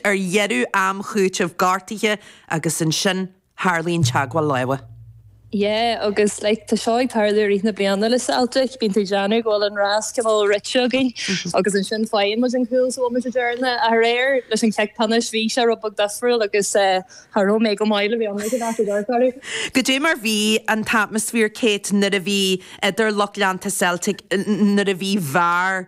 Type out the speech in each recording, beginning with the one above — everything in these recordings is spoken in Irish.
ar dheireadh am chúitimh gortaithe agus ansin tarlaíonn teagmháil láimhe. Yeah agus like tá seo ag tarlú i rith na bliana le Celtic, bíonn tú ag déanamh go bhfuil an rás chomh mór rite againn agus ansin faigheann muid an cúl sa bhomaite deireanach. Ach aréir leis an cic pionóis bhí sé rud beag difriúil agus b'fhearr liom go maith le bheith amuigh i gcaitheamh an dorchla. Caidé mar bhí an t-atmaisféar Kate, mar a bhí idir lucht leanta Celtic nuair a bhí bhfear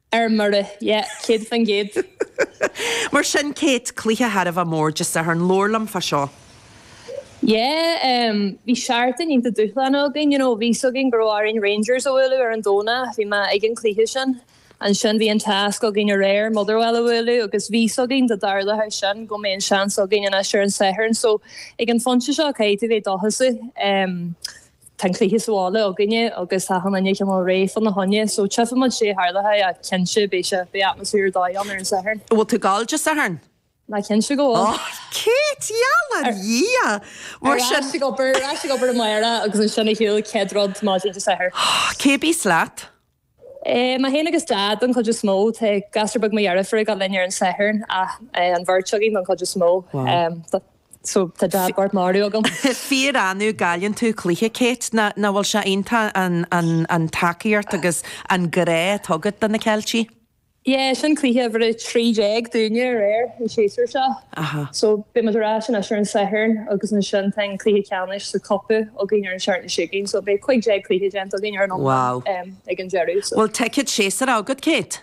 Ar mire, yeah, céad faoin gcéad. Mar sin, Kate, cluiche thar a bheith mór Dé Sathairn, labhair liom fá seo. Yeah, bhí seachtain iontach dúshláin againn, you know, bhí 'fhios againn go raibh orainn Rangers a bhualadh ar an Domhnach, bhí mé ag an cluiche sin. Ansin bhí an tasc againn aréir Motherwell a bhualadh agus bhí 'fhios againn dá dtarlódh sin go mbeadh an seans againn anois ar an Satharn so ag an phointe seo caithfidh tú bheith dóchasach. Tá an cluiche sa bhaile againne agus tá an fhoireann uilig réidh fána choinne, so tchífidh muid caidé a tharlós ach cinnte beidh sé, beidh atmaisféar ar dóigh ann ar an Satharn. An bhfuil tú ag gabháil Dé Sathairn? Á, cinnte go bhfuil. Oh, Kate, gheall ar Dhia! Mar sin. Ar ais ag obair, ar ais ag obair amárach agus ansin ar shiúl an chéad rud maidin Dé Sathairn. Cé a bhíos leat? Mé féin agus Dad don chuid is mó. Tá gasúr beag mo dheirfiúr ag gabháil linn ar an Satharn ach an bheirt againn don chuid is mó. So tá Dad bocht maraithe agam. Fíorannamh a chailleann tú cluiche, Kate, nach bhfuil sé iontach an tacaíocht agus an grá atá agat do na Ceiltigh? Yeah, sin cluiche uimhir a trí déag dúinne aréir, an séasúr seo. Aha. So, beidh muid ar ais anois ar an Satharn agus ansin tá an cluiche ceannais sa Cup againn ar an tseachtain seo chugainn. So, beidh cuig déag cluiche déanta againn ar an iomlán ag an deireadh. So. Bhfuil ticéad séasúir agat, Kate?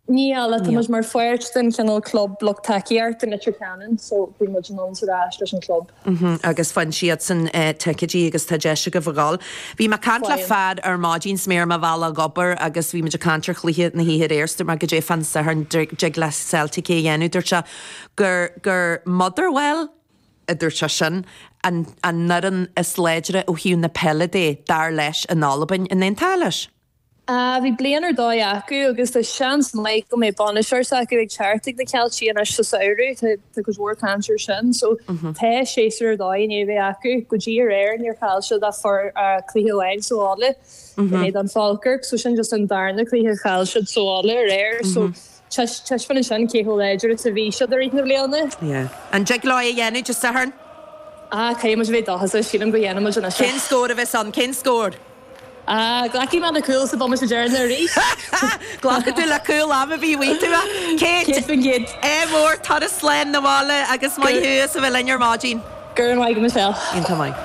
Níl, ach tá muid mar pháirt den chineál club lucht tacaíochta Leitir Ceanainn, so bíonn muid anonn is ar ais leis an club. agus faigheann siadsan ticéidí agus tá deis agaibh a ghabháil. Bhí mé ag caint le fear ar maidin is mé ar mo bhealach ag obair agus bhí muid ag caint ar chluiche na hoíche aréir. Dúirt mé caidé fán Satharn, an dtig le Celtic é a dhéanamh. Dúirt sé gur, gur Motherwell a dúirt sé sin an an fhoireann is láidre ó thaobh na peile de, dar leis, in Albain. An aontófá leis? Bhí bliain ar dóigh acu agus tá seans maith go mbeidh bainisteoir s'acu ag teacht chuig na Ceiltigh anois sa samhradh, tá go leor caint ar sin. So tá séasúr ar dóigh i ndiaidh a bheith acu. Go dtí aréir níor chaill siad ach cluiche amháin sa bhaile in éadán Falkirk, so sin just an darna cluiche a chaill siad sa bhaile aréir. So. Taispeánann sin cé chomh láidir is a bhí siad i rith na bliana. An dtig leo é a dhéanamh Dé Sathairn? Ah, caithfidh muid a bheith dóchasach. Sílim go ndéanfaidh muid anois é. Cén scór a bheas ann? Cén scór? Ah, glacfaidh mé le cúl sa bomaite deireanach arís. Glacfaidh tú le cúl am ar bith, a dtig tú, a Kate. Céad faoin gcéad. Ádh mór, turas slán 'na bhaile agus maith thú as a bheith linn ar maidin. Go raibh maith agat, Michelle. Iontach maith.